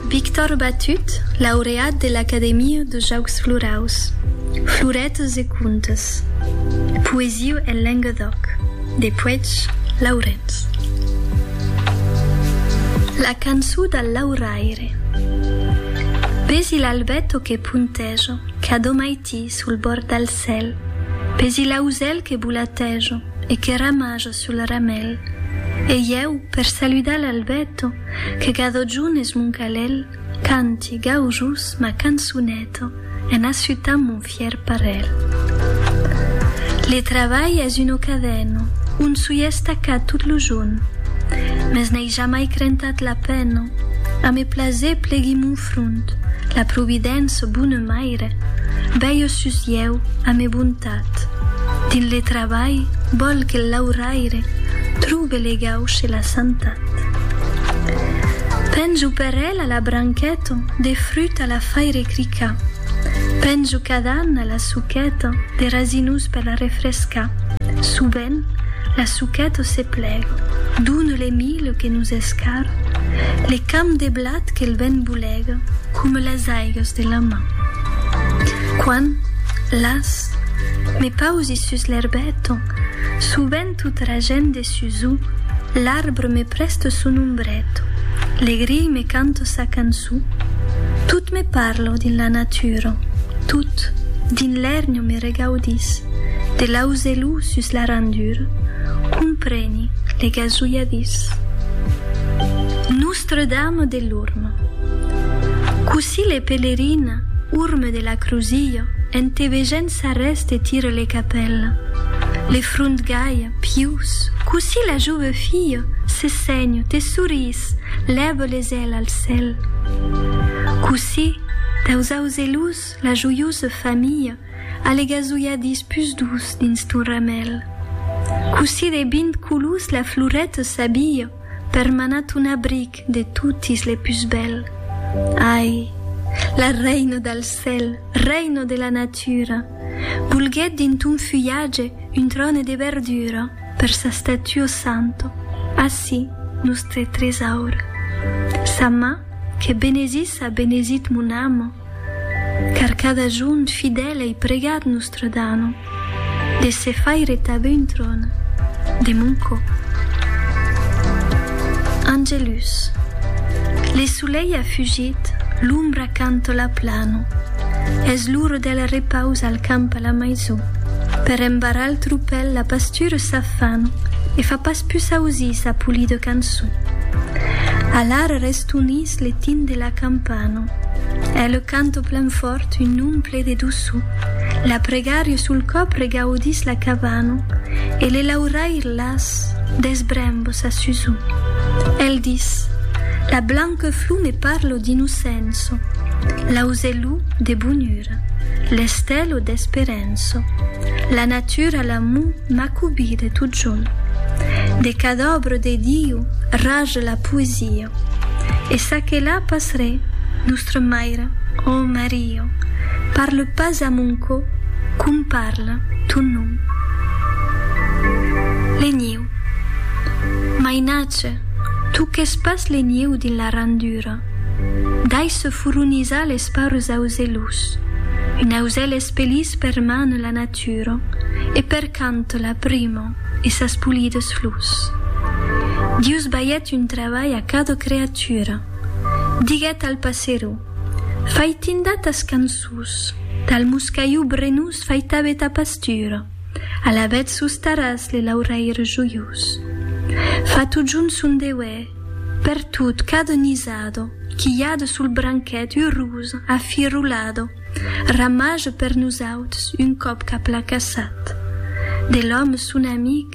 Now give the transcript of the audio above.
Victor Batut, laureat de l'Academia de Jaucs Floraus. Floretas e contes. Poesia en Lenguedoc, de Puech Laurenç. La cançó dal lauraire. Pesi l'albeto que punteja, qu'a do maití sul bòrd dal cèl, pesi l'ausèl que bolateja e que ramaja sul laramèl, e ieu, per saludar l'albeto, que gadò junt es mon calèl, canti, gaujós, ma cançoneta, en assutant mon fièr parèl. Le travalh es un ocadèno, on soi estacat tot lo junh, mes n'ai jamai crentat la pena, a me plaser plegui mon front, la providéncia, bona maire, bèi o sus ieu, a me bon. L'autoritat dins le trabalh vòl que l'auraire trobe le gauche la santat. Penjo per ela la branqueta de fruta la faire cricar. Penjo cadana la suqueta de rasinus per la refrescar. Sovent la suqueta se plega. Done le milho que nos escara, le camp de blat que'l vent bolega coma las aigas de la mar. Quan, las, me pausi sus l'erbèto, subent tota la gent de sus o, l'arbre me prèsta son ombrèto, le grilh me canta sa canço, tot me parla dins la natura, tot, dins l'èrnio me regaudís, de l'auzelò sus la randura, compreni le gasulhadís. Nòstre Dame de l'Orme. Cossí le pèlerin Orme de la Crusille en te vegent s'arrèste tire le capèl, le front gai, pius, cossí la jove fille se sènh, te sorís, lève les ailes al cèl. Cossí, daus auzelus, la joiosa famille a le gasolhadís pus doç dins ton ramèl. Cossí de vint colors la floreta s'abille, per manat un abric de totis le pus bèl. Ai, la reina del cèl, reina de la natura, volguèt dins ton fulhatge un tròne de verdura per sa statuo santo, ací nòstre tresaur. Sa man que benesis a benesit mon amo, car cada jorn fidèl ei pregat Nòstre Dano. De se faire tanben un tròn de mon còp. Angelus. Le solelh a fugit, l'ombra cantola plano. Es l'ora del repaus al camp a la maison. Per embarrar el tropèl la pastura s'afana e fa pas pus ausir sa polida cançon. Alara restonís le tin de la campana. Ela canta plan fòrt un nom ple de doçor. La pregàrio sul còp regaudís la cabana e le lauraire las des brembos a Suzu. El dis, La blanqueflor me parlo d'innocenço, l'auzelou de bonura, l'estèlo d'esperenço, la natura l'amor m'a cobide totjorn. De cada òbra de Diu raja la poesia. E ça que la pas re, Nostra Maira, ò Maria. Io parle pas a mon cò com parle ton nom. Lenhiu. Mainatge, toques pas lenhiu dins la randura. Dai se furonizar les paures auzelhos. Un auzèl es pelís per man la natura e per cant la prima e sas polides flors. Dius baièt un trabalh a cada creatura. Diguèt al passeró. Faitinda tas cançons. Tal moscaiu brenós faitabe ta pastura. Alavetz sos taràs le lauraire joiós. Fa totjorn son deuè. Pertot, cada nisado. Quilhada sul branquet urosa, afirolada. Ramaja per nosauts, un còp qu'a placassat. De l'òme son amic.